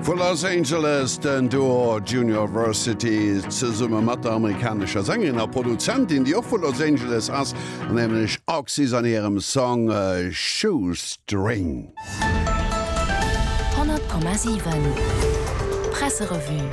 Vu Los Angeles den Duo Junior Versity zesumme mat der amerikanescher Sängerin a Produzentin, déi och vu Los Angeles ass, nämlech Oxys an hirem Song Shoestring. 100,7 Presserevue.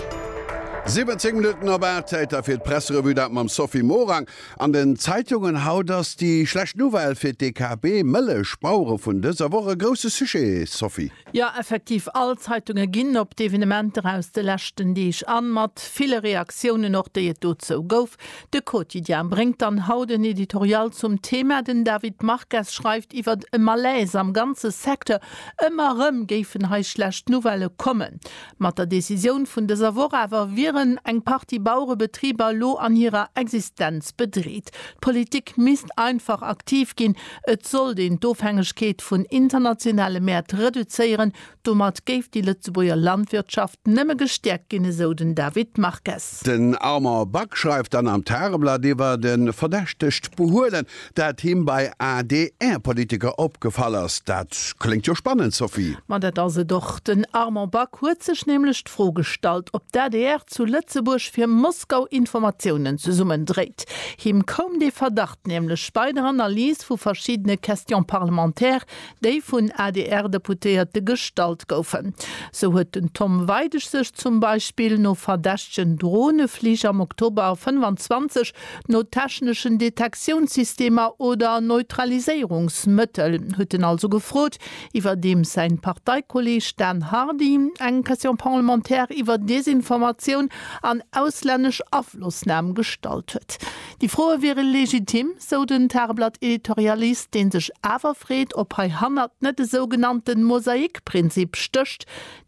17 Minutten op 8, Zäit da fir d'Presserevue, dat mam Sophie Morang. An den Zeitungen haut ass déi schlecht Nouvelle fir d'DKB Mëllech Bauere vun dëser Woch e grousse Sujet, Sophie. Jo, effektiv, all Zeitunge ginn op d'Evenementer aus de leschten Deeg an, mat ville Reaktiounen och, déi et dozou gouf. De Quotidien bréngt dann haut en Editorial zum Thema. Den David Marques schreift iwwer e Malaise am ganze Secteur, ëmmer erëm géifen hei schlecht Nouvellë kommen. Mat der Decisioun vun dëser Woch awer wieren eng Partie Bauerebetriber lo an hirer Existenz bedreet. D'Politik misst einfach aktiv ginn. Et sollt een d'Ofhängegkeet vun internationale Mäert reduzéieren. Domat géif déi Lëtzebuerger Landwirtschaft nëmme gestäerkt ginn, esou den David Marques. Den Armand Back schreift dann am Tageblatt iwwer e verdächtegt Behuelen, Dat him bei ADR-Politiker opgefall ass. Dat kléngt jo spannend, Sophie. Ma dat ass et och. Den Armand Back huet sech nämlech d'Fro gestallt, ob d'ADR zu Lëtzebuerg fir Moskau Informatiounen zesummendréit. Him koum dee Verdacht nämlech bei der Analys vu verschiddene Questions parlementaires, déi vun ADR-Deputéierte gestallt goufen. Sou huet den Tom Weidig sech zum Beispill no verdächtegen Droneflich am Oktober 25 No techneschen Detektiounssystemer oder Neutraliséierungsmëttel, huet en also gefrot, iwwerdeems säin Parteikolleeg Dan Hardy eng Question parlementaire iwwer Desinformatioun an auslännesch Aflossnam gestallt huet. Déi Froe wiere legitim, sou den Tageblatt-Editorialist, dee sech awer freet, ob hei hannert net e sougenannte Mosaikprinzip stécht,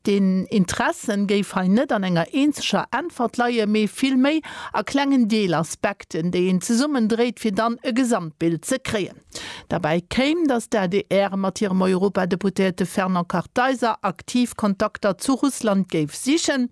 Den Interesse géif hei net an enger eenzeger Äntwert leien, mee vill méi a klengen Deelaspekten, déi een zesummen dréit, fir dann e Gesamtbild ze kréien. Derbäi kéim, datt d'ADR mat hirem Europadeputéierte Fernand Kartheiser aktiv Kontakter zu Russland géif sichen.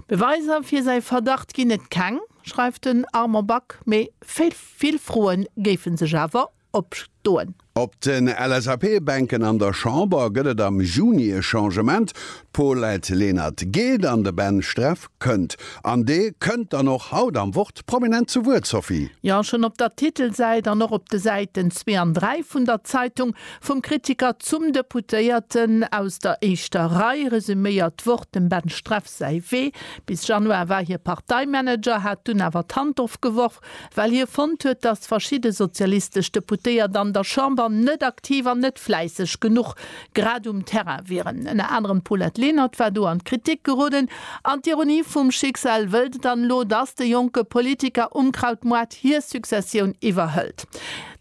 Beweiser fir säi Verdacht ginn et keng, schreift den Armand Back, mee vill Froe géife sech awer opstoen. Op den LSAP-Bänken an der Chamber gëtt et am Juni e Changement, D'Paulette Lenert geet an de Ben Streff kënnt. An dee kënnt dann och haut am Wort prominent zu Wuert, Sophie. Jo, schonn op der Titelsäit an och op de Säiten zwee an dräi vun der Zeitung vum Kritiker zum Deputéierten aus der éischter Rei resüméiert d'Wort dem Ben Streff säi Wee. Bis Januar war hie Parteimanager, hat dunn awer d'Hand ofgeworf. well hie fonnt huet, datt verschidde sozialistesch Deputéiert an der Chamber net aktiv an net fläisseg genuch grad um Terrain wieren. Ënner anerem d'Paulette Lenert war do an d'Kritik geroden. An d'Ironie vum Schicksal wëllt et dann elo, datt de jonke Politiker Unkrautmoart hir Successioun iwwerhëlt.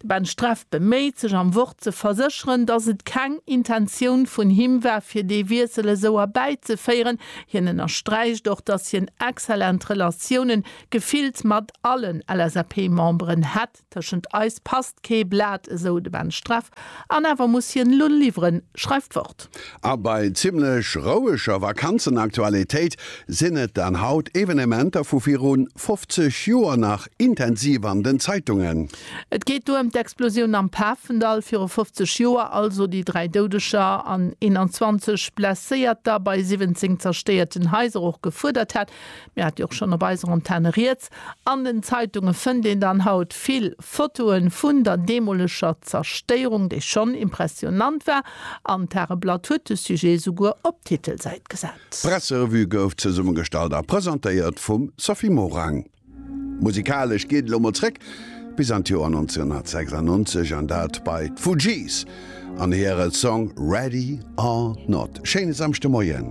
De Ben Streff beméit sech am Wort ze versécheren, datt et keng Intentioun vun him war, fir dee Wiessel esou erbäizeféieren. Hien ënnersträicht och, datt hien excellent Relatiounen Gefillt mat allen LSAP-Memberen hätt, Tëschent eis passt kee Blat, esou de Ben Streff. An awer muss hien elo liwweren, schreift d'Wort. A bei zimmlech roueger Vakanzenaktualitéit sinn et dann haut Evenementer vu virun 50 Joer nach intensiv an den Zeitungen. Et geet do ëm d'Explosioun am Pafendall viru 50 Joer, also déi 3 Doudeger an 21 Blesséierter bei 17 zerstéierten Haiser och gefuerdert hätt, Mir hat jo och schonn op eiser Antenne rieds. An den Zeitunge fënnt een dann haut vill Fotoe vun der deemoleger Zerstéierung, déi schonn impressionnant war, an d'Tageblatt huet de Sujet souguer op d'Titelsäit gesat. D'Presserevue gouf zesummegestallt a presentéiert vum Sophie Morang. Musikalesch geet et elo mol zréck bis an d'Joer 1996 an dat bei d'Fugees an hire Song Ready or Not. Schéine Samschdemoien.